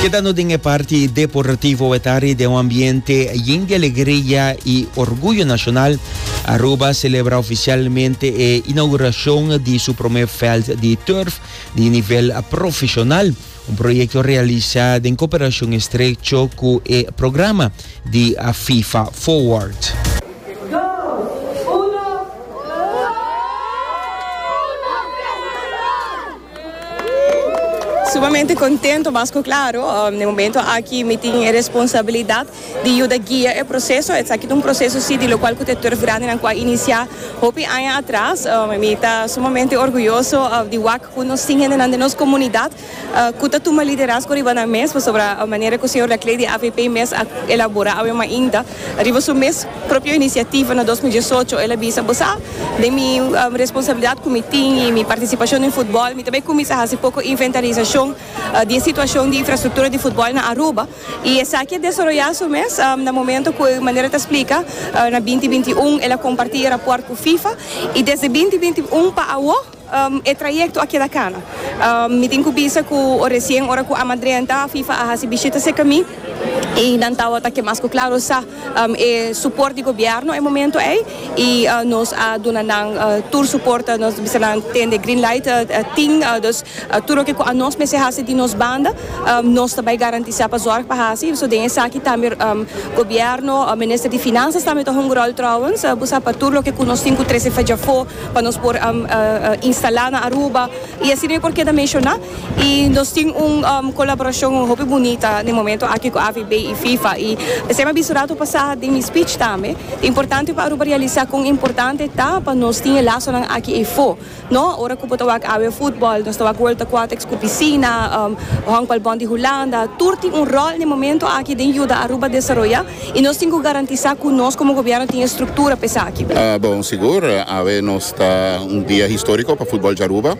Kedando den e parti deportivo wetari den un ambiente yin di alegria y orguyo nacional, Aruba celebra oficialmente e inauguracion di su prome veld di turf di nivel profesional, un proyecto realisa den cooperacion estrecho cu e programa di FIFA Forward. Sumamente contento, mas cu claro, den momento aki mi tin e responsabilidad di yuda guia e proceso. Esaki ta un proceso si di locual cu ta e turf grandenan cu a inicia hopi aña atras. Mi ta sumamente orguyoso di wak cu nos tin hendenan den nos comunidad cu ta tuma liderazgo riba nan mes, pasobra manera cu señor D'Aclady avp mes a elabora awe mainta. Riba su mes propio iniciativa na dos mil diesocho el a bisa, Bo sa, den mi responsabilidad cu mi tin y mi participacion den futbol, mi ta bay cuminsa haci poco inventarizacion di e situacion di infrastructura di futbol na Aruba. Y esaki a desaroya su mes na momento cu manera ta splica na binti binti un el a comparti e raport cu Fifa y desde binti binti un pa awo, E trayecto a keda cana. Mi tin cu bisa cu o recien ora cu Amadre a nta, FIFA a haci bishita cerca mi y nan tawata ke mas cu claro sa e support di gobierno e momento ey y nos a duna nan tur support, nos a bisa nan tende green light tin, dus tur loke cu anos mester haci di nos banda nos ta bay garantisa pa zorg pa haci, so den esaki tambe gobierno, Minister di Finanzas tambe ta hunga rol trouwens, bo sa pa tur loke cu nos tin cu trece fajafo. pa nos por instala na Aruba y asina yo por keda menciona y nos tin un colaboracion hopi bunita den momento aki cu AVB y FIFA y p'esey m'ha bisto rato pasa den mi speech tambe ta importante pa Aruba realisa con importante ta pa nos tin e lasonan aki efo no ora cu bo ta wak awe football nos ta wak world aquatics cu piscina honkbalbond di Hulanda tur tin un rol den momento aki den yuda Aruba desaroya. I nos tin ku garantisá ku nos komo gobièrnu tin e struktura pa esaki. Bon, sigur, awe nos ta un dia históriko pa futbòl di Aruba.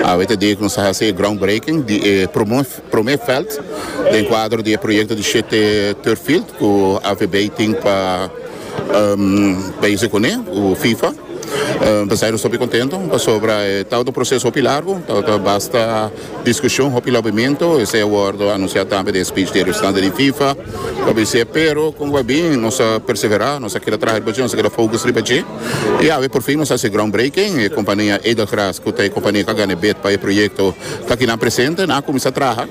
Awe ta e dia ku nos ta hasi e groundbreaking di e promé vèlt den kuadro di e proyekto di shete turf field ku AVB tin pa beizi kuné ku Fifa. P'esei nos ta hopi kontentu pasobra e ta un proseso hopi largu, ta basta Discusion hopi lobiamento esey a wordo anuncia tambe den speech di representante di fifa lo bisey pero con bo a bin nos a persevera nos a keda traha riba dje nos a keda focus riba dje y awe por fin nos a haci ground breaking e compania Edelgras cu ta e compania cu a gana e bid pa e proyecto ta aki nan presente nan a cuminsa traha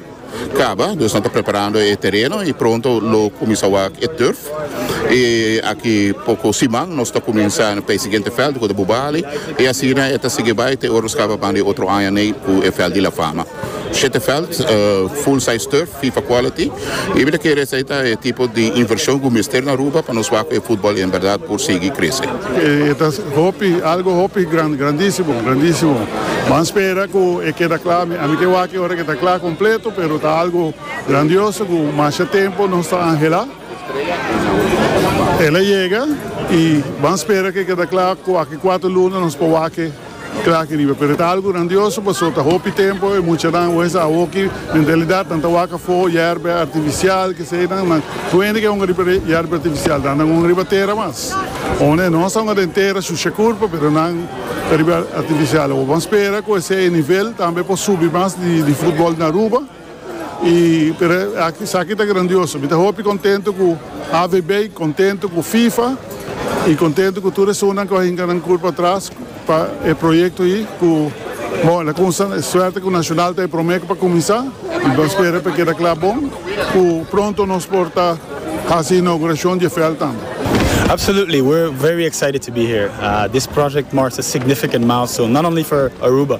caba nos ta preparando e tereno y pronto lo cuminsa wak e turf. E aki poko siman nos ta kuminsá p'e siguiente vèlt ku ta por Bali i asina e ta sigui bai te ora nos kaba banda e otro aña nei ku e vèlt di La Fama. Shete vèlt, full size turf, fifa quality, i mi ta kere esei ta e tipo di invershon ku mester na Aruba pa nos wak ku e futbòl en bèrdat por sigui krese. E ta hopi, algu hopi gran, grandísimo, grandísimo. Ban spera ku e keda kla, ami ke wak e ora ku e ta kla kompleto, pero ta algu. Grandioso cu masha tempo nos ta angela. El a yega y ban spera ke keda cla cu aki cuatro luna nos por wake cla aki riba. Pero e ta algo grandioso paso ta hopi tempo e muchanan wens a hoki mentalidad nan ta wak afo yerbe artificial kesedan nan wende ke a hunga riba yerbe artificial dan nan hunga riba tera mas o ne nos a hunga den tera shusha curpa pero nan ta riba artificial awor ban spera cu esey nivel tambe por subi mas di football na Aruba. Y pero esaki ta grandioso. Mi ta hopi contento cu AVB, contento cu FIFA y contento cu tur esunnan cu a hinca nan cur patras pa e proyecto ayi cu bon el a cunsha suerte cu Nacional ta e prome cu pa cuminsa y bo spera cu e keda cla bon cu pronto nos por ta haci e inauguracion dje veld tambe. Absolutely, we're very excited to be here. This project marks a significant milestone, not only for Aruba,